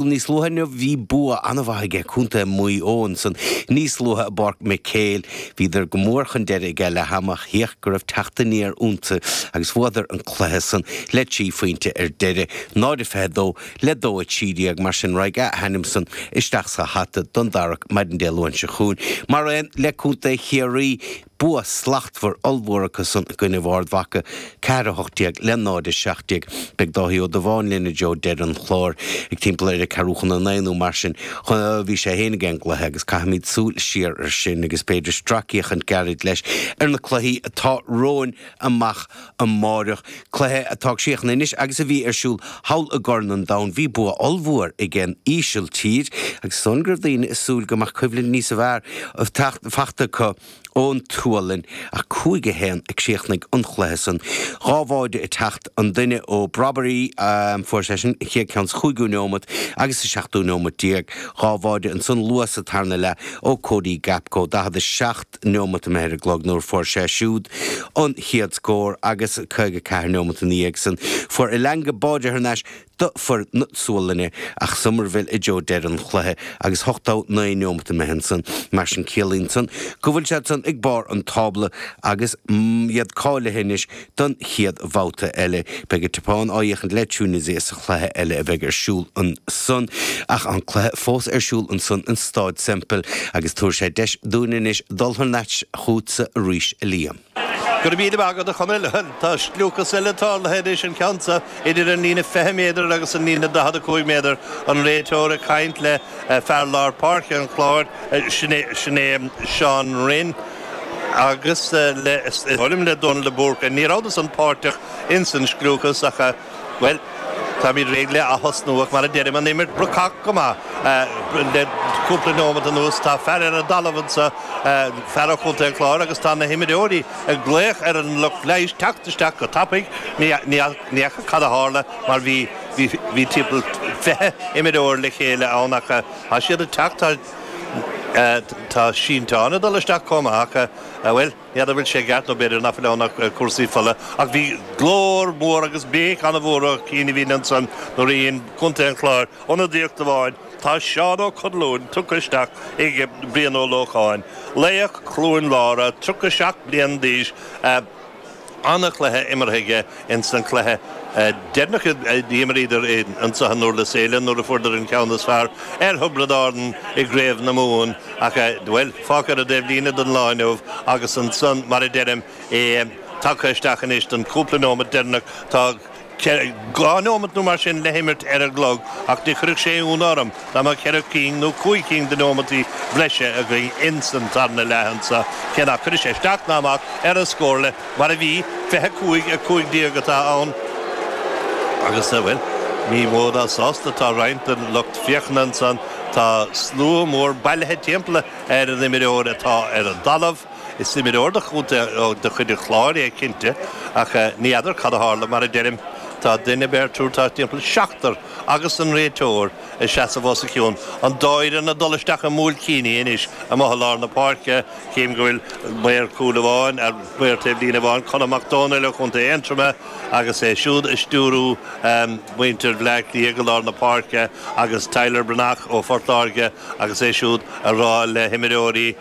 Níos luaithe inniu bhí bua an-mhaith aige contae Mhaigh Eo ansan níos luaithe i bPáirc Mhic Héil. Bhíodar go mór chun deiridh aige leath-am ach híoch go raibh teacht aniar iontu agus bhuadar an cluiche san le trí phointe ar deireadh, 0-22 le 2-13. Mar sin raghaidh a hainm san isteach sa hata don dtarrac maidin Dé Luain seo chugainn, maraon le contae Chiarraí. Bua slachtmhar ollmhór acusan i gcoinnibh Ard Mhaca, 4 18 le 0 17. Beidh Dáithí Ó Dubháin linn i dtreo deireadh an chláir, ag timpeall ar a ceathrúchun a naoi nó mar sin. Bhí sé féin ag an gcluiche agus caithfimid súil siar air sin agus b'fhéidir stracfhéachaint gairid leis ar na cluichí atá romhainn amach. amáireach. Cluiche atá críochnaithe anois agus a bhí ar siúl thall i gCorn an Domhain. Bhí bua ollmhór ag an Ísiltír agus is dóigh go raibh daoine ag súil go mbeadh coimhlint níos fearr faighte acu ón tSualainn. Ach cúig a haon a chríochnaigh an cluiche san. Dhá bháide ag teacht an duine ó Brobbey. Fuair seisean an chéad ceann sa chúigiú neomat agus sa seachtú neomat déag. Dhá bháide ansan luath sa tarna leath ó Cody Gakpo. 47. seacht neomat imithe ar an gclog nuair fuair sé siúd an chéad scór agus caoga a ceathair neomat ina dhiaidh san fuair Elanga báide thar n-ais d'fhir na Sualainne ach Summerville i dtreo deireadh an chluiche agus ochtó a naoi neomat imithe ansan. Mar sin ciallaíonn san go bhfuil siad san ag barr an tábla agus iad cáilithe anois Don chéad bhabhta eile, beidh an tSeapáin á fhéachaint le Tunisia sa chluiche eile a bheidh ar siúl ansan. Ach tá an cluiche fós ar siúl ansan in Stáid Semple agus tabharfaidh sé deis dúinn anois dul thar n-ais chughatsa arís, a Liam. Go raibh míle maith agat, a Chonaill. Tá scliúchas eile tarlaithe anois an ceann seo idir an líne 20 méadar agus an líne 45 méadar. An réiteoir ag caint le. Fear lár páirce an Chláir, sin é Seán Rynne agus le, um, le Dónal de Búrca, ní rabhadar san páirteach ins an scliúchas ach, bhuel, táimid réidh le aththosnú ach mar a deirim, an imirt brocach go maith le cúpla neomat anuas. Tá fear ar an dtalamh anso, fear ó Chontae an Chláir agus tá na himreoirí ag glaoch ar an lucht leighis teacht isteach go tapaidh, ní fhaca cad a tharla, mar bhí bhí timpeall fiche imreoir le chéile ann ach tá siad ag teacht tá tá sínteán ag dul isteach chomh maith ach bhuel n'fheadar an bhfuil sé i gceart nó b'fhéidir nach bhfuil ann ach cúrsaí fola ach bhí glór mór agus béic an-mhór ó chianaibhín ansan nuair a dhein contae an Chláir ionadaíocht amháin tá Seán Ó Conluain tugtha isteach ag Brian Ó Lócháin laoch Chluain Lára 37 bliain d'aois ana-chluiche imeartha aige ins an cluiche deireanach a d'imríodar anseo i nDúrlas Éile nuair a fuaireadar an ceann is fearr ar Thiobraid Árann i gCraobh na Mumhan ach, bhuel, fágtha ar an dtaobhlíne don lá inniu agus ansan, mar a deirim, é tagtha isteach anois don chúpla neomat deireanach. Tá. dhá neomat nó mar sin le himirt ar an gclog, ach ní chuirfeadh sé ionadh orm dá mbeadh ceithre cinn nó cúig cinn de neomataí breise againn ins an tarna leath anso, cé nach cuirfidh sé isteach ná amach ar an scórchlár mar a bhí, fiche a cúig, a cúig déag atá ann agus, bhuel, ní mó ná sásta atá roinnt den lucht féachana ansan, tá slua mór bailithe timpeall ar an imreoir atá ar an dtalamh. Is imreoir de chuid an Chláir é cinnte, ach ní fheadar cad a tharla, mar a deirim, tá duine beirt, triúr thart timpeall, seachtar agus an réiteoir ag seasamh os a chionn. An dóigh le dul isteach i mBuailcíní anois, amuigh i lár na páirce, chím go bhfuil maor cúil amháin, maor taobh líne amháin, Conall Mac Domhnaill ó chontae Aontroma, agus é siúd ag stiúrú mhuintir Bhleá Cliath go lár na páirce, agus Tyler Breathnach ó Phort Láirge agus é siúd a rá le himreoirí,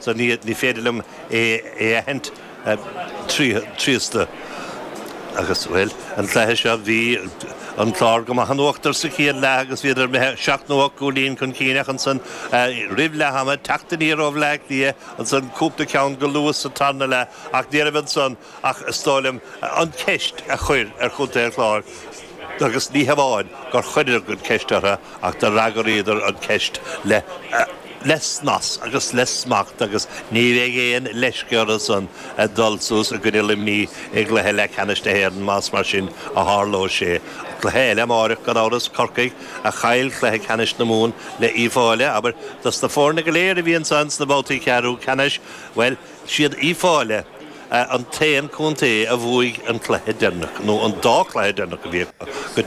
so ní féidir liom é a aithint tríosta agus, bhuel, an cluiche seo, bhí an Clár go maith in uachtar sa chéad leath agus bhíodar seacht nó ocht gcúilín chun cinn ach ansan, roimh leath ama, teacht aniar ó Bhleá Cliath, ansan cúpla ceann go luath sa tarna leath ach níorbh ansan. ach is dóigh liom an cheist a chur ar Chontae an Chláir agus ní hamháin gur chuireadar an cheist ortha ach d'fhreagraíodar an cheist le le snas agus le smacht agus ní bheidh aon leisce ortha san a dhul suas i gcoinne Luimní i gcluiche leathcheannais na hÉireann más mar sin a tharlóidh sé. Cluiche eile amáireach gan amhras, Corcaigh a chaill cluiche ceannais na Mumhan le Uíbh Fhailí, abair dos na foirne go léir a bhí ansan sna babhtaí ceathrú ceannais, bhuel! siad Uíbh Fhailí, an t-aon contae a bhuaigh an cluiche deireanach, nó an dá cluiche deireanach a bhí acu, go.